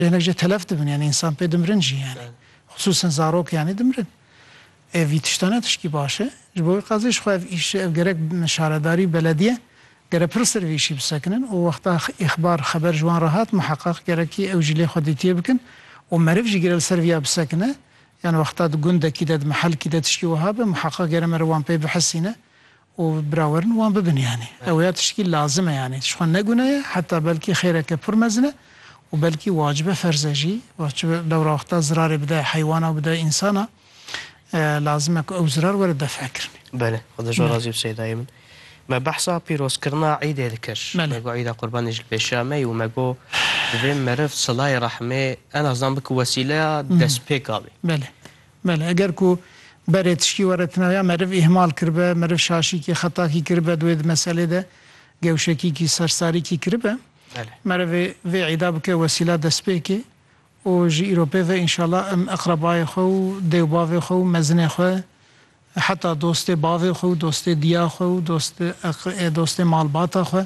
Hinek jî telef dibin yanî însan pê dimirin jî yanî xisûsen zarok yanî dimirin. Ê vî tişta ne tişkî baş e. Ji bo wî qazê ji xwe ev îşi ev gerek şaredarî û belediye gere pir ser vî îşî bisekinin û wexta îxbar xeber ji wan re hat miheqeq gerekî ew jî lê xwe dîtiyê bikin û meriv jî gere li ser vîya bisekine yan wexta di gundekî de di mihelkî de tişkî wiha be miheqeq gere meriv wan pê bihisîne û birawerin wan bibin yanî ew ya tiştî lazim e yanî ji xwe negune ye heta belkî xêreke pir mezin e û belkî wacibe ferz e jî wacibe dewra wexta zirarê bidayê heywana û bidayê însana lazim e ku ew zirar were def e kirinî. Belê xwe da ji razî bi Seydayê min. Me behsa pîrozkirina îdê dikir. Me got îda qurbanê ji li pêşiya me ye û me got divê meriv silayê rehmê en azan bikin wesîleya destpêka wî. Belê, eger ku berê tiştî were ti navê ya meriv îhmal kiribe, meriv şaşîkî, xetakî kiribe di wê di meselê de, gewşekîkî, sersarîkî kiribe, merivê vê îda bike wesîla destpêkê û ji îro pê ve înşallah em eqrebayê xwe û dê û bavê xwe û mezinê xwe heta dostê bavê xwe û dostê diya xwe û dostê dostê malbata xwe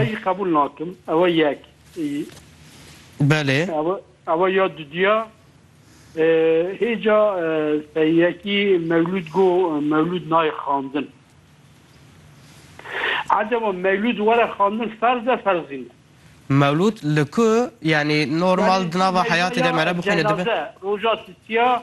Ez jî qebûl nakim. Ew e yek. Belê. Ew e ya dudiya. Hêca seyekî mewlûd go mewlûd nayê xandin. Acaba mewlûd were xandin ferz e ferzî ne? Mewlûd li ku yanî normal di nava heyatê de mere bixwîne dibe? Roja tisiya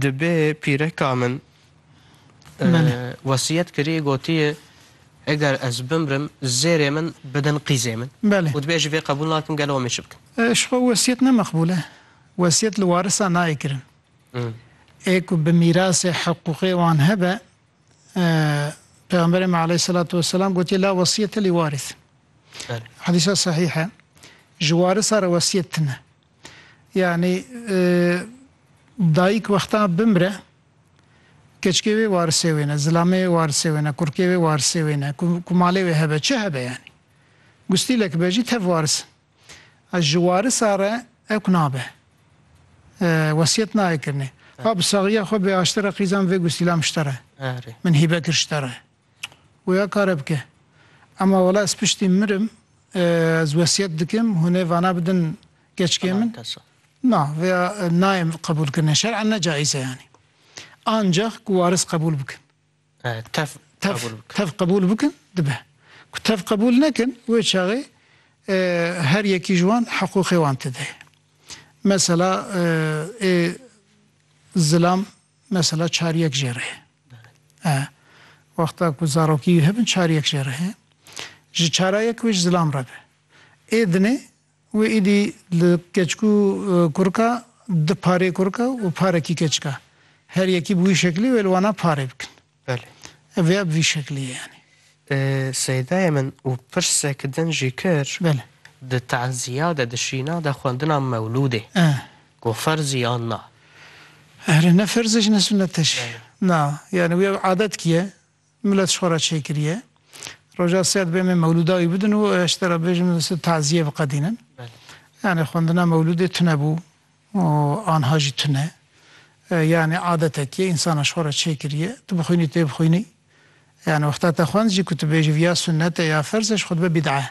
Dibe pîreka min wesiyet kirî gotiyê eger ez bimrim zêrê min bidin qîzê min û dibe ji vê qebûl nakim gelo em ê çi bikin? Ji xwe wesiyet ne meqbûl e. Wesiyet li warisan nayê kirin. Ê ku bi mîrasê hiqûqê wan hebe Pêxemberê me aleyhîsselatu wesselam gotiyê la wesiyete li warîth. Hedîsa sehîh e. Ji warisa re wesiyet tune. Yanî dayîk wexta bimire keçikê wê warisê wê ne, zilamê wê warisê wê ne, kurkê wê warisê wê ne, ku malê wê hebe çi hebe yanî. Gustîlek be jî tev waris in. Ez ji warisa re ewk nabe. Wesiyet nayê kirinê. Ka bi saxiya xwe bê aştera qîzan vê gustîlam ji te re. Min hîbe kir ji te re. Wêya kare bike. Ema wela ez piştî mirim ez wesiyet dikim hûn ê vana bidin keçikê min? Na, vêya nayê qebûl kirine. Şer'en ne caiz e yanî. Ancax ku waris qebûl bikin. Tev qebûl bikin. Tev qebûl bikin dibe. Ku tev qebûl nekin wê çaxê her yekî ji wan hiqûqê wan tide ye. Mesela ê zilam Mesela çar yek jê re e. Wexta ku zarokî wî hebin çar yek jê re e. Ji çara yek wê ji zilam re be. Ê dinê wê îdî li keçik û kurika di parê kurika û parekî keçika. Her yekî bi wî şeklî wê li wana parê bikin. Belê. Ev ya bi vî şeklê ye yanî. Seydayê min û pirsek din jî kir. Belê. Di teziya de, di şîna de xwendina mewlûdê ku ferzî yan na? Here ne ferz e ji ne sunet e jî. Na, yanî wî ev adet ki ye, milet ji xwe re çêkiriye. Roja sêya dibe em ê mewlûda wî bidin û eştera bibêjin tu teziyê biqedînin. Belê. Yanî xwendina mewlûdê tune bû. û anha jî tune. Yanî adetek ye, însanan ji xwe re çêkiriye. Tu bixwînî tê bixwînî. Yanî wexta te xwend jî ku tu bêjî viya sunnete ya ferz e ji xwe dibe bîd'e.